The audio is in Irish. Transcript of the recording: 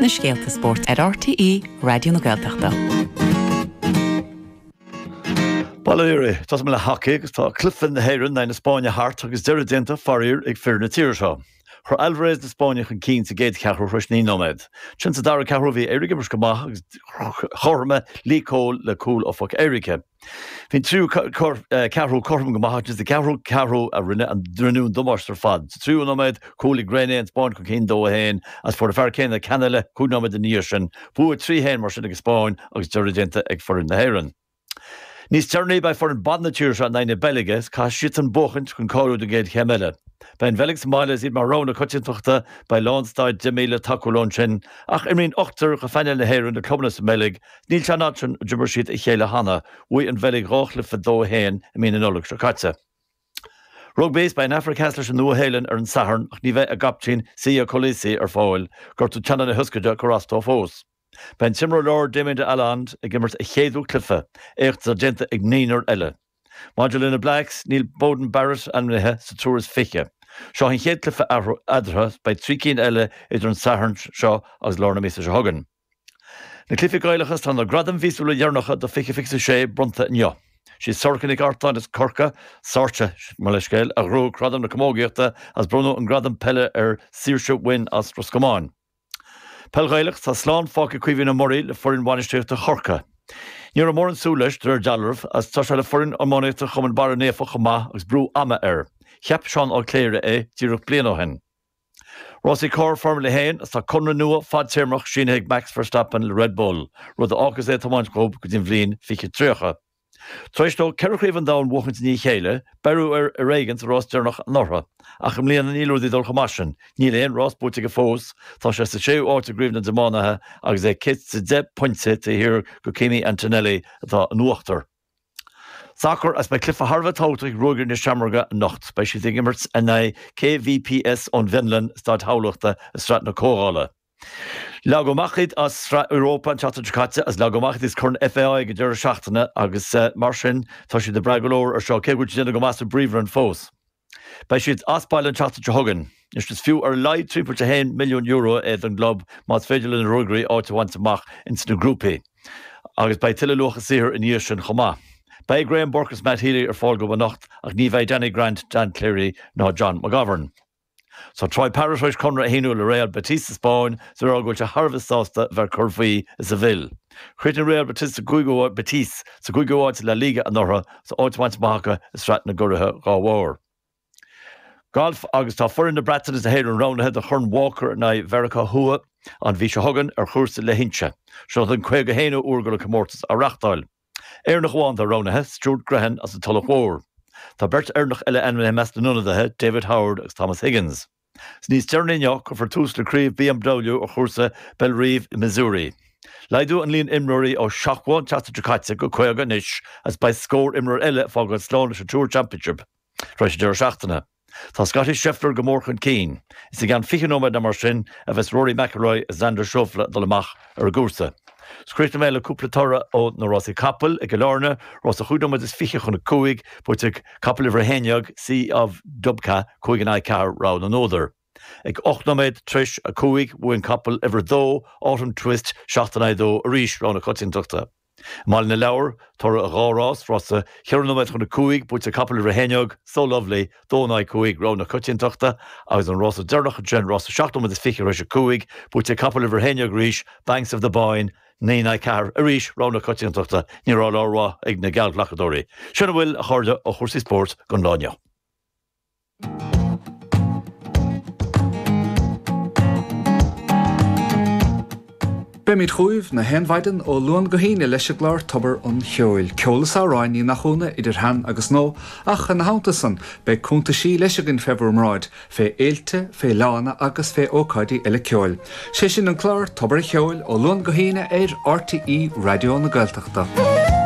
na scéalta spóirt ar RTÉ Raidió na Gaeltachta. Bail ó Dhia oraibh, tosóidh mé le hacaí agus tá cluiche na hÉireann in aghaidh na Spáinne thart agus deireadh déanta faraor ag fir na tíre seo. Chuir Alvarez na Spáinne chun cinn sa gcéad cheathrú tar éis naoi nóiméad. Ansin sa dara ceathrú bhí Éire ag imirt go maith agus chothromaigh Lee Cole le cúl ó phoc éirice. Bhí an tríú ceathrú cothrom go maith agus is sa gceathrú ceathrú a rinne a rinneadh an damáiste ar fad. Sa tríú nóiméad, chuir Marc Reyné an Spáinn chun cinn 2-1 agus fuair an fear céanna ceann eile cúig nóiméad ina dhiaidh sin. Bua 3-1 mar sin ag an Spáinn agus deireadh déanta ag foireann na hÉireann. Níos deireanaí, beidh foireann ban na tíre seo in aghaidh na Beilge is caithfidh siadsan buachaint chun cáiliú don gcéad chéim eile. Beidh an Bheilg sa mbaile is iad mar rogha na coitiantachta, beidh lán staid 10,000 ag tacú leo ansin ach imríonn ochtar de phainéal na hÉireann le clubanna sa mBeilg Níl teann eadrainn, d'imir siad a chéile cheana, bhuaigh an Bheilg dhá chluiche 2-1 i mí na Nollag seo caite. Rugbaí, is beidh an Afraic Theas leis an Nua-Shéalainn ar an Satharn ach ní bheidh a gcaptaen Siya Kolisi ar fáil, gortú teannán na hioscaide ag cur as dó fós. Beidh an t-imreoir láir Damian de Allende ag imirt a chéadú cluiche, éacht atá déanta ag naonúr eile. Maidir le na Blacks, níl Beauden Barrett ainmnithe sa triúr is fiche. Seo an chéad cluiche eadarthu, is beidh trí cinn eile idir an Satharn seo agus lár na míosa seo chugainn. Na Cluichí Gaelacha, is tá na gradaim mhíosúla dheireanacha do 2026 bronnta inniu. Sí Sorcha Nic Artáin as Corcaigh, Sorcha, mo leithscéal, a ghnóthaigh Gradam na Camógaíochta is bronnadh an gradam peile ar Saoirse Wynne as Ros Comáin. Peil Ghaelach, Tá slán fágtha ag Caoimhín Ó Muirí le foireann bhainistíochta Chorcaí. Ní raibh mórán súil leis, de réir dealraimh, is tá sé le foireann iománaíochta Chumann Barra Naofa chomh maith agus brú ama air. Cheap Seán Ó Cléire é díreach bliain ó shin. Rásaí carr Foirmle a hAon is tá conradh nua fadtéarmach sínithe ag Max Verstappen le Red Bull, rud a fhágfas é ag tiomáint dhóibh go dtí an bhliain 2030. Tar éis dó ceithre Chraobh an Domhain a bhuachaint i ndiaidh a chéile, beireadh air ar éigean sa rás deireanach anuraidh, ach i mbliana níl rudaí ag dul chomh maith sin, níl aon rás buaite aige fós, tá sé sa séú áit i gCraobh na dTiománaithe agus é céad is deich bpointe taobh thiar de Kimi Antonelli atá in uachtar. Sacar is beidh cluiche thar a bheith tábhachtach ag Ruagairí na Seamróige anocht. Beidh siad ag imirt in aghaidh KVPS ón bhFionlainn i Staid Thamhlachta i Sraith na Comhdhála. Leagadh amach iad as Sraith Europa an tseachtain seo caite agus leagadh amach iad as Corn FAI ag an deireadh seachtaine agus mar sin tá siad ag brath go leor air seo cé go bhfuil siad ag déanamh go maith sa bPríomhroinn fós. Beidh siad as baile an tseachtain seo chugainn. Anois, is fiú ar a laghad €3.1 milliún é don gclub más féidir le na Ruagairí áit a bhaint amach ins na grúpaí. Agus beidh tuilleadh luach a saothair ina dhiaidh sin chomh maith. Beidh Graham Burke agus Matt Healy ar fáil dóibh anocht ach ní bheidh Danny Grant, Dan Cleary ná John McGovern. Tá Troy Parrott tar éis conradh a shíniú le Real Betis sa Spáinn is é ag rá go bhfuil sé thar a bheith sásta a bheith ag cur faoi i Seville. Chríochnaigh Real Betis sa gcúig Betis sa gcúigiú háit i La Liga anuraidh, Tá áit bainte amach acu i sraith na gcuraithe dhá bharr. Galf agus Tá foireann na Breataine is na hÉireann roghnaithe do Chorn Walker in aghaidh Mheiriceá Thuaidh an mhí seo chugainn ar chúrsa Leithinse. Seo an 51ú uair go bhfuil an comórtas á reáchtáil. Éireannach amháin atá roghnaithe, Stuart Grehan as an Tulach Mhór. Tá beirt Éireannach eile ainmnithe i measc na n-ionadaithe, David Howard agus Thomas Higgins. Is níos deireanaí inniu a cuirfear tús le craobh BMW ar chúrsa Bellerive i Missouri. Laghdaíodh an líon imreoirí ó 70 an tseachtain seo caite go 50 anois agus beidh scór imreoir eile ag fágáil slán leis an Tour Championship tar éis an deireadh seachtaine. Tá Scottie Scheffler go mór chun cinn. Is i gceann 20 nóiméad nó mar sin a bheas Rory McIlroy is Xander Schauffele ag dul amach. ar an gcúrsa. Críochnóidh mé le cúpla toradh ó na rásaí capall i gCill Áirne, rás a chúig nóiméad is fiche chun a cúig, buaite ag capall uimhir a haon déag, Sea of Dubka, cúig in aghaidh ceathair, rogha na n-údar. Ag ocht nóiméad tar éis a cúig bhuaigh an capall uimhir a dó, Autumn Twist, seacht in aghaidh a dó arís, rogha na coitiantachta. I mBaile na Lobhar, toradh dhá rás, rása cheithre nóiméad chun a cúig, buaite ag capall uimhir a haon déag, So Lovely, dó in aghaidh cúig, Rogha na Coitiantachta, agus an rása deireanach ansin, rása seacht nóiméad is fiche tar éis a cúig, buaite ag capall uimhir a haon déag arís, Banks of the Boyne, naoi in aghaidh ceathair, arís Rogha na Coitiantachta. Ní raibh lá rómhaith ag na geallghlacadóirí. Sin a bhfuil, a chairde, ó chúrsaí spóirt don lá inniu. Beimid chugaibh nach aon mhaidin ó Luan go hAoine leis an gclár Tobar an Cheoil, ceol is amhráin, ní nach ionadh, idir shean agus nua, ach ina theannta san, beidh cúntaisí leis againn fé bhur mbráid, fé fhéilte, fé fhleánna agus fé ócáidí eile ceoil. 'Sé sin an clár Tobar an Cheoil ó Luan go hAoine ar RTÉ Raidió na Gaeltachta.